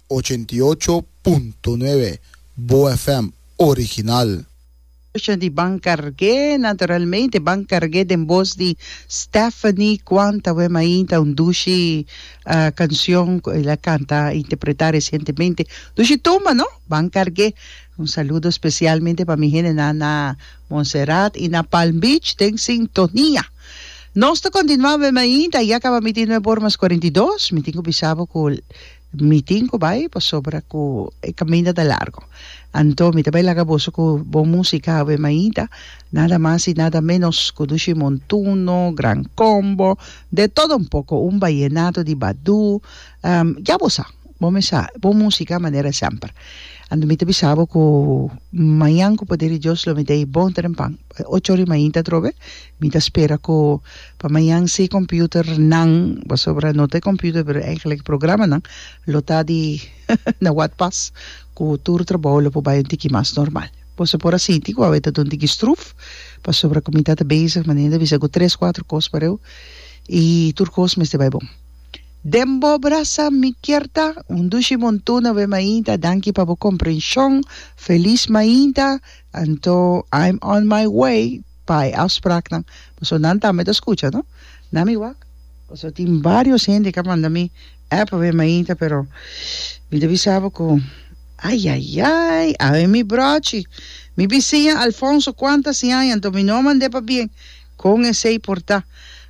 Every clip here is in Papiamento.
Ochenta i ocho punto nuebe Boa FM Original. Escucha di Ban Cargué, naturalmente Ban Cargué den bos di Stephanie Cuanta we mainta un dushi cancion cu el a canta, a interpreta recientemente, dushi tumba no, Ban Cargué, un saludo specialmente pa mi hendenan na Montserrat y na Palm Beach den sintonia. Nos ta continua be mainta ya caba mitin nu e bor mas cuarenta y dos, mi tin cu bisa bo cu mitin cu bay pasobra cu e caminda ta largo. Anto mi ta bay laga boso cu bon musica be mainta, nada mas y nada menos cu Dushi Montuno, Gran Combo, De Todo Un Poco, un Vallenato di Badu, Ya bo sa, bo mes sa, bo músika manera semper. Anto mi ta bisa bo ku mañan ku poder di Dios lo mi ta bon ta den pan. Ocho ora di mainta atrobe mi ta spera ku pa mañan si e computernan, pasobra no ta e computer pero eigenlijk e programanan lo ta di na wak pas ku tur trabou lo por bai un tiki mas normal. Bo sa por a sinti ku awe ta dun tiki struf pasobra ku mi ta ta bezig manera mi ta bisa ku tres, kuater kos pareu i tur kos mester bai bon. Den bo brasa mi kier ta un dushi montuna be mainta danki pa bo comprension feliz mainta anto I'm on my way pa e afspraaknan paso nan tambe ta scucha no na mi wak paso tin varios hende ka manda mi app be mainta pero mi ta bisa bo cu ayayay awe mi brochi mi bisiña Alfonso cuanta siaña anto mi no a mande pa bien Kon esei por ta?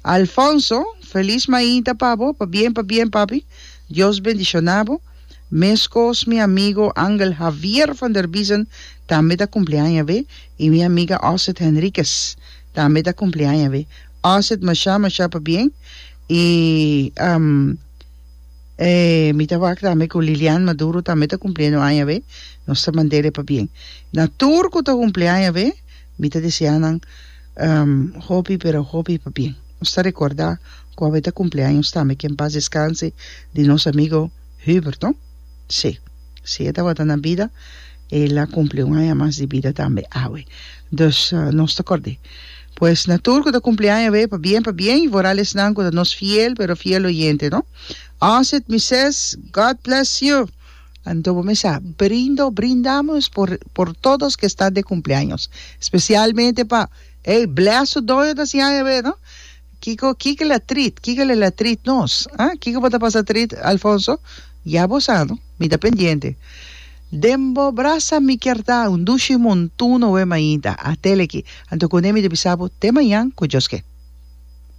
Alfonso, Felis mainta pa bo, pabien pabien papi, Dios bendiciona bo. Meskos mi amigo Angel Javier van der Biesen tambe ta cumpleaña awe y mi amiga Osset Henriquez tambe ta cumpleaña awe. Osset masha masha pabien y mi ta wak tambe cu Lilian Maduro tambe ta cumpliendo aña awe, nos ta mandele pabien. Na tur cu ta cumpleaña awe, Mi ta desea nan hopi pero hopi pa bien. Nos ta recorda cu awe ta cumpleaños tambe que en paz descanse di nos amigo Hubert, no? Sí, si e tabata na bida el a cumpli un aña mas di bida tambe awe. Dus nos ta cord'é. Pues na tur cu ta cumpleaño awe pa bien pa bien y foral esnan cu ta nos fiel pero fiel oyente, no? Osset Mises, God bless you! Anto bo mester a brindo, brindamos por por todos que está de cumpleaños, especialmente pa ey bless su doño ta siña ebe no kico kico la trit kico le la trit nos ah kico bo ta pasa trit Alfonso ya bo sa no mi ta pendiente den bo brasa mi kier ta un dushi montuno wema ainda a tele aki anto cuné mi ta bisa bo te mañan cu Dios ke.